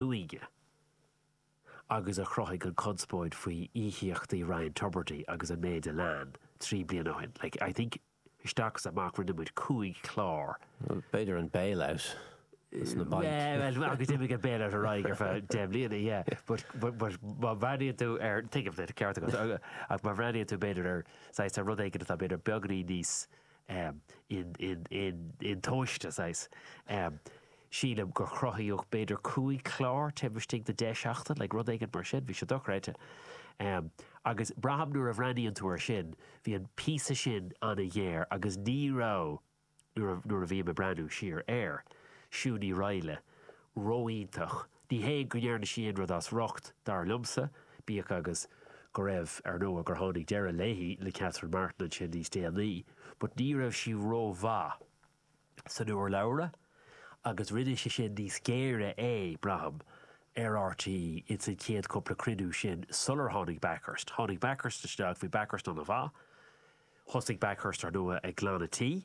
uaighe, agus a chruthaigh an conspóid faoi íocaíochtaí Ryan Tubridy agus an méid a lean trí bliana ó shin. Like, I think isteach is amach rinne muid cúig chlár. Bhuel, b'fhéidir an bail-out ag na bainc. Yeah, well, agus d'imigh an bail-out ar aghaidh ar feadh deich mbliana, yeah. But, but, but má bhreathnaíonn tú ar, think of it, ceart agat, ach má bhreathnaíonn tú b'fhéidir ar, saghas, ar rud éigin atá b'fhéidir beagnainí níos um in, in, in, in tomhaiste, saghas. um Sílim gur cruthaíodh b'fhéidir cúig chlár taobh istigh de deich seachtain, like rud éigin mar sin, bhí sé dochreidte. um Agus braithim nuair a bhreathnaíonn tú ar sin, bhí an píosa sin an-ghéar agus ní raibh, nuair a, nuair a bhím ag breathnú siar air, Siún Ní Raghallaigh, ró-iontach Ní hé go ndearna sí aon rud as riocht, dar liomsa, bíodh agus go raibh, ar ndóigh, gur tháinig deireadh léithi le Catherine Martin ansin níos déanaí, but ní raibh sí ró-mhaith san urlabhra agus rinne sé sin níos géire é, braithim, ar RTÉ ins an chéad cúpla cruinniú sin sular tháinig Bakhurst. Tháinig Bakhurst isteach, bhí Bakhurst an-mhaith. Thosaigh Bakhurst, ar ndóigh, ag glanadh tí.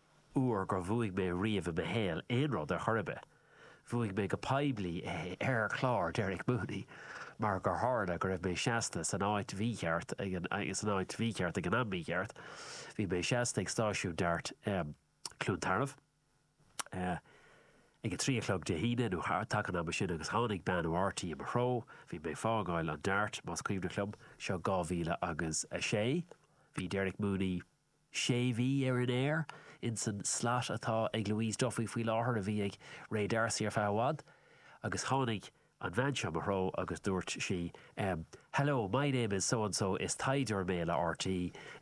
uair gur bhuaigh mé riamh i mo shaol aon rud ar chor ar bith. Bhuaigh mé go poiblí é ar chlár Derek Mooney mar gur tharla go raibh mé seasta san áit mhícheart san áit mhícheart ag an am mícheart. Bhí mé seasta ag stáisiún DART Chluain Tarbh ag a trí a chlog Dé hAoine nó taca an ama sin agus tháinig bean ó RTÉ i mo threo. Bhí mé ag fágáil an DART, más cuimhneach liom, seo dhá mhíle agus a sé. Bhí Derek Mooney. Sé mhí ar an aer, ins an slot atá ag Louise Duffy faoi láthair a bhí ag Ray D'Arcy ar feadh i bhfad agus tháinig an bhean seo i mo threo agus dúirt sí ehm Hello, my name is so and so is taighdeoir mé le RTÉ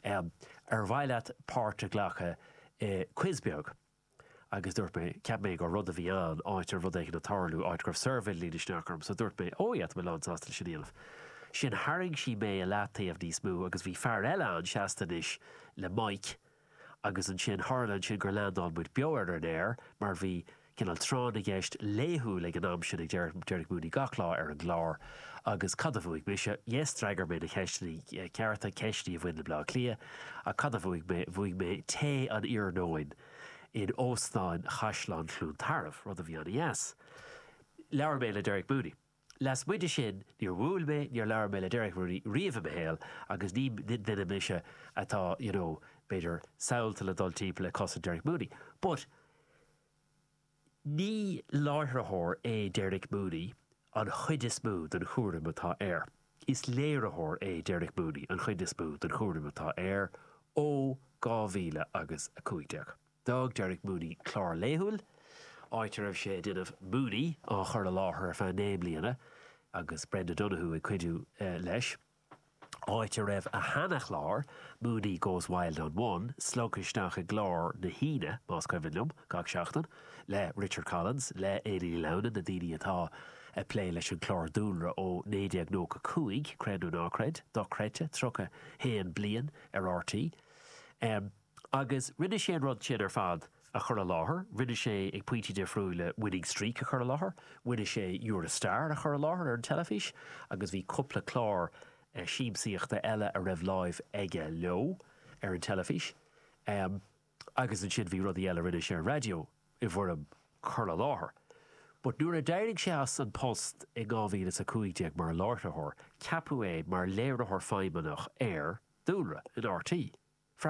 ehm ar mhaith leat páirt a ghlacadh i quiz beag? agus dúirt mé, cheap mé gur rud a bhí ann, áit ar rud éigin a tharlú, áit go raibh suirbhé le líonadh isteach orm, so dúirt mé, oh yeah, tá mé lán sásta leis an éileamh sin. Tharraing sí mé i leath taobh níos mó agus bhí fear eile ann seasta anois le mic agus ansin, tharla ansin gur leandáil muid beo ar an aer mar bhí cineál tráth na gceist laethúil ag an am sin ag Derek, Derek Mooney gach lá ar an gclár. Agus cad a bhuaigh mise? Yes, d'fhreagair mé na ceisteanna cearta, ceisteanna a bhain le Bleá Cliath. Ach cad a bhuaigh mé? Bhuaigh mé tae an iarnóin in Óstán Chaisleán Chluain Tarbh, rud a bhí an-deas. Labhair mé le Derek Mooney. Lasmuigh de sin, níor bhuail mé, níor labhair mé le Derek Mooney riamh i mo shaol agus ní duine mise atá, you know, b'fhéidir, samhalta le dul timpeall ag cosaint Derek Mooney. But. Ní láithreoir é Derek Mooney an chuid is mó den chúram atá air. Is léiritheoir é Derek Mooney an chuid is mó den chúram atá air ó 2015. D'fhág Derek Mooney clár laethúil, áit a raibh sé ag déanamh Mooney, á chur i láthair feadh naoi mbliana agus Brenda Donohue ag cuidiú leis. áit a raibh a sheanachlár, Mooney Goes Wild on One, slogtha isteach i gclár na hAoine, más cuimhin liom, gach seachtain, le Richard Collins, le Éanna Ní Lamhna, na daoine atá ag plé leis an chlár dúlra ó 1995, creid nó ná creid, dochreidte, 31 bliain ar RTÉ. Agus rinne sé an rud sin ar fad a chur i láthair, rinne sé ag pointí difriúla Winning Streak a chur i láthair, rinne sé You're a Star a chur i láthair ar an teilifís agus bhí cúpla clár siamsaíochta eile a raibh láimh aige leo ar an teilifís. Agus ansin bhí rudaí eile a rinne sé ar an raidió i bhfoirm cur i láthair. But nuair a d'éirigh sé as an post i 2015 mar láithreoir, ceapadh é mar léiritheoir feidhmeannach ar, dúlra, in RTÉ. Freagra.